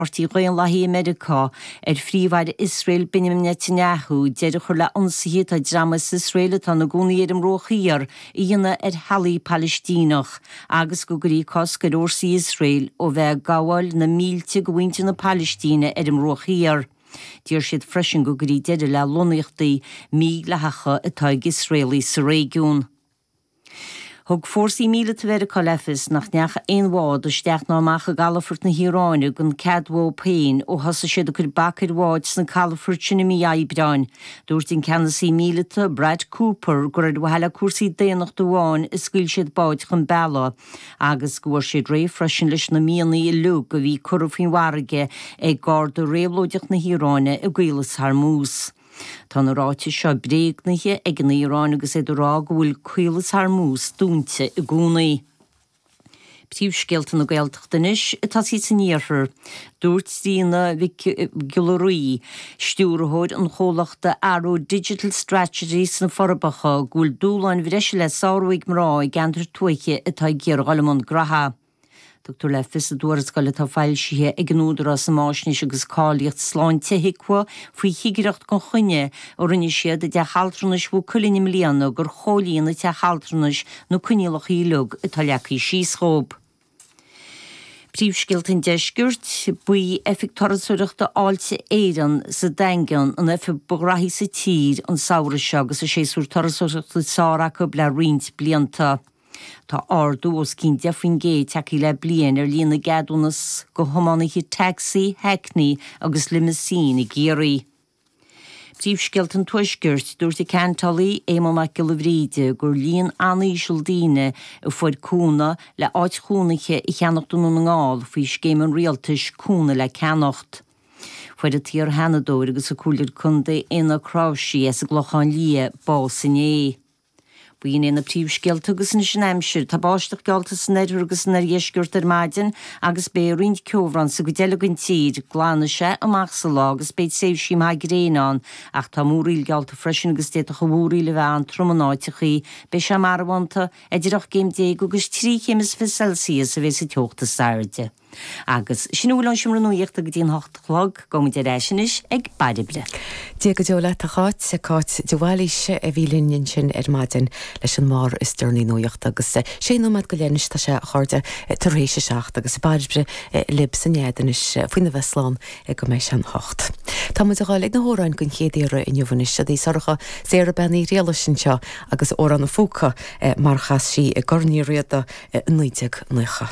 Páirtí Dhaonlathaí i Meiriceá, ar Phríomh-Aire Iosrael Benjamin Netanyahu deireadh a chur le hionsaithe atá dream as Iosrael atá ina gcónaí ar an mBruach Thiar a dhéanamh ar theaghlaigh Palaistíneach agus go gcuirfí cosc ar fhórsaí Iosrael ó bheith ag gabháil na mílte de mhuintir na Palaistíne ar an mBruach Thiar. D'iarr siad freisin go gcuirfí deireadh le lonnaíochtaí mídhleathacha atá ag Iosraelaigh sa réigiún. Thug fórsaí míleata Mheiriceá le fios nach ndeach aon bhád isteach ná amach i gcalafoirt na hIaráine gan cead uathu féin ó thosaigh siad ag cur bac ar bháid sna calafoirt sin i mí Aibreáin. Dúirt an ceannasaí míleata, Brad Cooper, gur ar mhaithe le cúrsaí daonnachta amháin a scaoil siad báid chun bealaigh agus go bhfuair siad réidh freisin leis na mianaigh uilig a bhí curtha faoin bhfarraige ag Garda Réabhlóideach na hIaráine i gCaolas Hormuz. Tá na ráitis seo bréagnaithe ag an Iaráin agus iad ag rá go bhfuil Caolas Hormuz dúinte i gcónaí. Príomhscéalta na Gaeltachta anois, ag tosaí san iarthar. Dúirt Tríona Mhic Giolla Rí, stiúrthóir an chomhlachta Aró Digital Strategy sna Forbacha go bhfuil dúshláin bhreise le sárú ag mná i gceantair tuaithe atá ag iarraidh dul i mbun gnó. Tugtar le fios i dtuarascáil atá foilsithe ag an Údarás um Fháisnéis agus Cáilíocht Sláinte, HIQA, faoi chigireacht gan choinne a rinne siad i dTeach Altranais Mhaigh Cuilinn i mbliana gur chomhlíon an teach altranais na coinníollacha uilig atá leagtha síos dhób. Príomhscéalta an Deiscirt, Ba í Oifig Turasóireachta Fháilte Éireann sa Daingean an oifig ba ghnóthaí sa tír an samhradh seo agus an séasúr turasóireachta is fearr acu le roinnt blianta. Tá ardú os cionn 10 faoin gcéad tagtha le bliain ar líon na gceadúnas do thiománaithe taxi, hackney agus limousine i gCiarraí. Príomhscéalta an Tuaiscirt, Dúirt an Ceantálaí Éamon Mac Giolla Bhríde gur líon an-íseal daoine a fuair cúnamh le áit chónaithe a cheannacht i nDún na nGall faoi scéim an Rialtais Cúnamh le Ceannacht. Fuair an t-iarsheanadóir agus an comhairleoir contae Éanna Ó Cnáimhsí as an gClochán Liath bás inné. Ba shin é na príomhscéalta agus anois an aimsir. Tá báisteach geallta san oirthear agus san oirdheisceart ar maidin agus beidh roinnt ceobhrán sa gcuid eile den tír. Glanfaidh sé amach sa lá agus beidh tréimhsí maithe gréine ann ach tá múraíl geallta freisin agus d'fhéadfadh an mhúraíl a bheith an-trom in áiteachaí. Beidh sé marbhánta. Idir ocht gcéim déag agus trí chéim is fiche Celsius a bheas an teocht is airde. Agus sin a bhfuil ón Seomra Nuachta go dtí an hocht a chlog. Gabhaimid ar ais anois ag Bairbre. Dia go deo leat, a Cháit. Cáit de Bhailís a bhí linn ansin ar maidin leis an mbarr is deireanaí nuachta agus sé nóiméad go leith anois tá sé, a chairde, tar éis a seacht agus Bairbre libh sa nead anois faoina bheith slán go mbeidh sé an hocht. Tá muid a ghabháil ag na hamhráin den chéad iarraidh inniu anois, seod í Sorcha, Sarah Bean Uí Ghriallais anseo agus Amhrán an Phúca mar chas sí i gCorn Uí Riada i 1990.